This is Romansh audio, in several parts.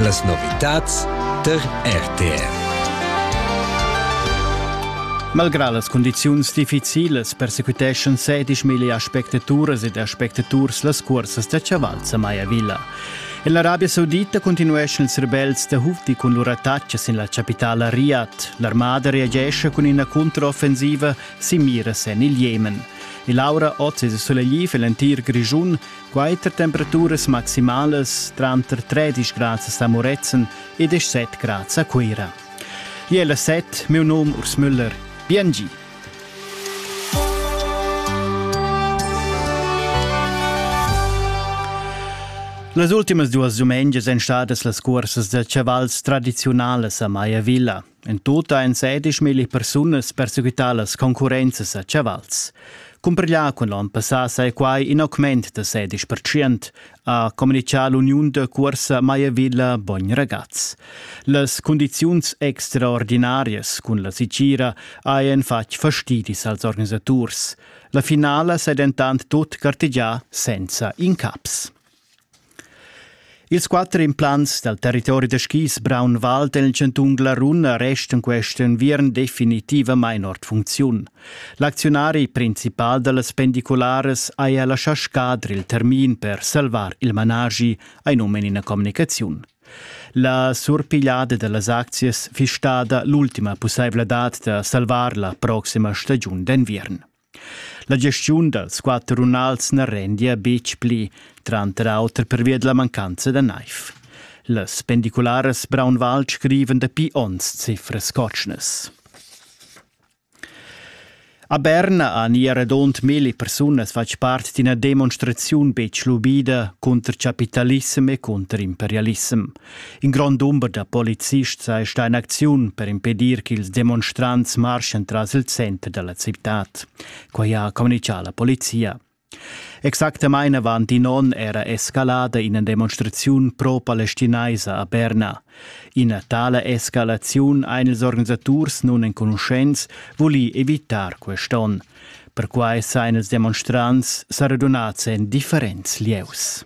Las novitads tar RTR. Malgrà las cundiziuns difficilas persecuteschan sedisch milli aspectaturas ed aspectaturs las cursas da chaval Samaia Villa. En l'Arabia Saudita continueschan ils rebels da Houthi cun lur attacca sin la chapitala Riyadh. L'armada reagesce cun ina controffensiva sin miras en il Jemen. E Laura Oz è sulegliv en l'entir Grischun. Quater temperaturas maximalas tranter 13 grads a Moretzen e 17 grads a Cuira. Iela set, meu nom Urs Müller. Biengi! Las ultimas duas dumengias èn stadas las cursas da chavals tradiziunalas a Maiavilla. En tutta ein sedischmilli persunas perseguitar las concurrenzas a chavals. Cumprglià cun l'on passà sai quai in augment da sedisch percent, ha communichà l'uniun de cuorsa Maiavilla Bogn Ragaz. Las condiziuns extraordinarias cun la sicira hajan fatg fastidis als organisaturs. La finala sei dentant tut gartegià senza incaps. Ils quatter implants dal territori da skis Braunwald en il chantun Glarun restan quest enviern definitivamain ord funcziun. L'acziunari principal da las pendicularas haja laschà scadre il termin per salvar il managi, ein um in ina communicaziun. La surpigliada da las aczias fiss stada l'ultima pussaivladad da salvar la proxima stagiun d'enviern. La gestiun dals quatter runals na rendia betg pli, tranter auter pervia da la mancanza da naiv. Las pendicularas Braunwald scrivan dapi onns cifras cotschnas. A Berna han ier radund milli persunas fatg part d'ina demonstraziun betg lubida cunter chapitalissem e cunter imperialissem. In grond dumber da polizists ha sta in acziun per impedir ch'ils demonstrants marschan tras il center dalla citad. Quai ha communitgà la polizia. Exactamain avant in onn era escalada ina demonstraziun pro-palestinaisa a Berna. Ina tala escalaziun ein ils organisaturs nunenconuschents voli evitar quest'onn. Perquai sein ils demonstrants sa radunats en differents lieus.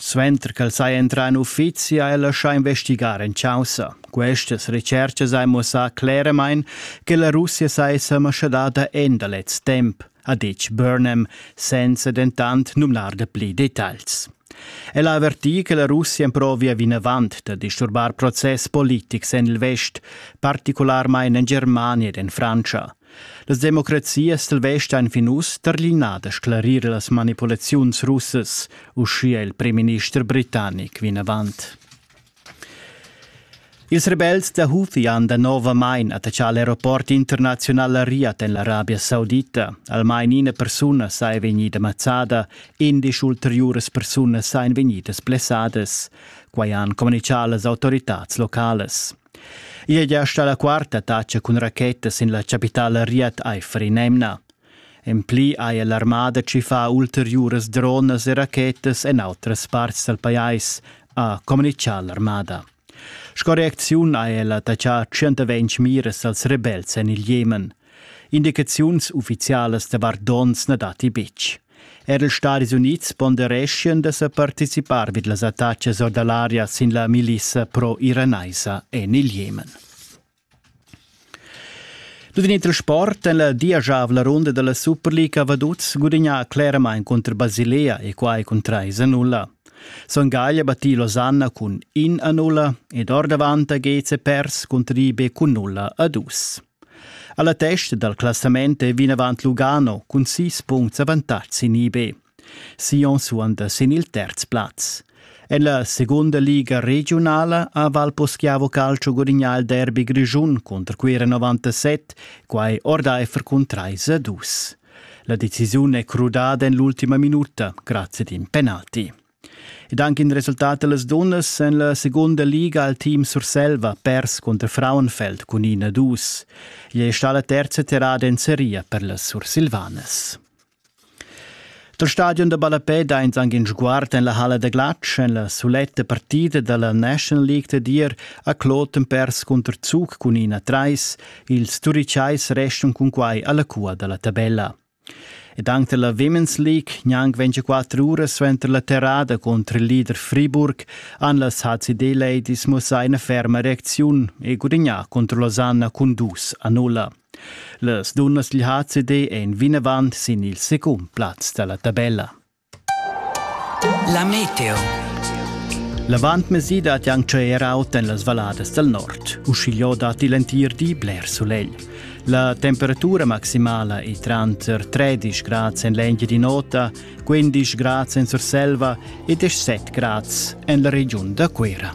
Suenter ch'el saja entrà en uffizi ha el laschà investigar en chaussa. Questas retschertgas han muossà cleramain che la Russia saja mascadada en da lez temp, ha ditg Burnham, senza dentant numnar da pli detagls. El ha avvertì che la Russia emprovia vinavant da disturbar process politics en il vest, particularmain en Germania ed en Frantscha. Las democrazias stelvestan fin uss tarlinar da sclarir las manipulaziuns russas, uschia il primminister britannic vinavant. Ils rebels da Houthi han danovamain attaccà l'aeroport internaziunal a Riad en l'Arabia Saudita. Almain ina persuna sa è vegnida mazzada, indesch ulteriuras persunas èn vegnidas blessadas. Quai han communitgà las autoritads localas. I è gia stà la quarta tatscha cun racheta sin la chapitala Riad aifer in'emna. En pli haja l'armada tschiffà ulteriuras dronas e rachetas en autras parts dal pajais, ha communitgà l'armada. Sco reacziun ha ella taxà 120 miras als rebels en il Jemen. Indicaziuns uffizialas davart donns na datti betg. Er ils Stadis Unids pondereschien da sa participar vid las attacas or da l'aria sin la milissa pro-iranaisa en il Jemen. Tut in il sport en la diajavla runda della Superliga Vaduz gudigna claramain contro Basilea e quai cun 3 a 0. Son Gaglia battì Losanna cun 1 a 0 ed ordavant a Geze pers contro Ribe cun 0 a 2. Alla testa dal classament è vinavant Lugano cun sis puncts avantatg sin IB. Sion suonda sin il terz plaz. En la segunda liga regiunala ha Valposchiavo Calcio gudignà il derby grischun contro Cuira 97, quai ordaifer cun 3 a 2. La decisiun è crudada en l'ultima minuta grazie ad in penalti. Ed anche in resultat dallas dunnas en la segunda liga al team Surselva pers cunter Frauenfeld cun ina dus. Igl è stata la terza terrada en seria per las Sursilvanas. Dal stadion da ballapè dains anche in sguard en la halla da glatsch en la suletta partida dalla National League da dir a Kloten pers cunter Zug cun ina trais. Ils Turicais restan cun quai alla cua dalla tabella. Ed anc dalla Women's League gnanc 24 uras suenter la terrada cunter il leader Friburg han las HCD Ladies mussà ina ferma reacziun e gudignà cunter Losanna cun dus a nulla. Las dunnas dil HCD ein vinavant sin il secund plaz dalla tabella. La meteo. L'avantmesi dat anc er aut en las valladas dal nord. Uschigliò datti l'entir di bler sulegl. La temperatura maximala è tranter 13 grads en l'Engiadin'Ota, 15 grads en Surselva e 17 grads en la regiun da Cuera.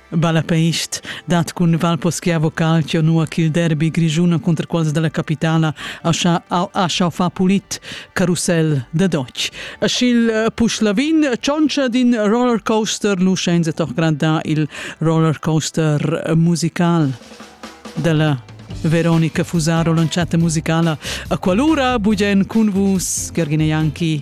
Balapeist dat cun Val Poschiavo Calcio nua ch'il derbi grischun cunter quals dalla capitala ha schau far pulit carussel da Deutsch. E sch'il eh, Puschlavin tschontscha d'in roller coaster lu shenza toccra da il roller coaster eh, musical dalla Veronica Fusaro lanciata musicala a qualora bugen cun vus Gergine Janki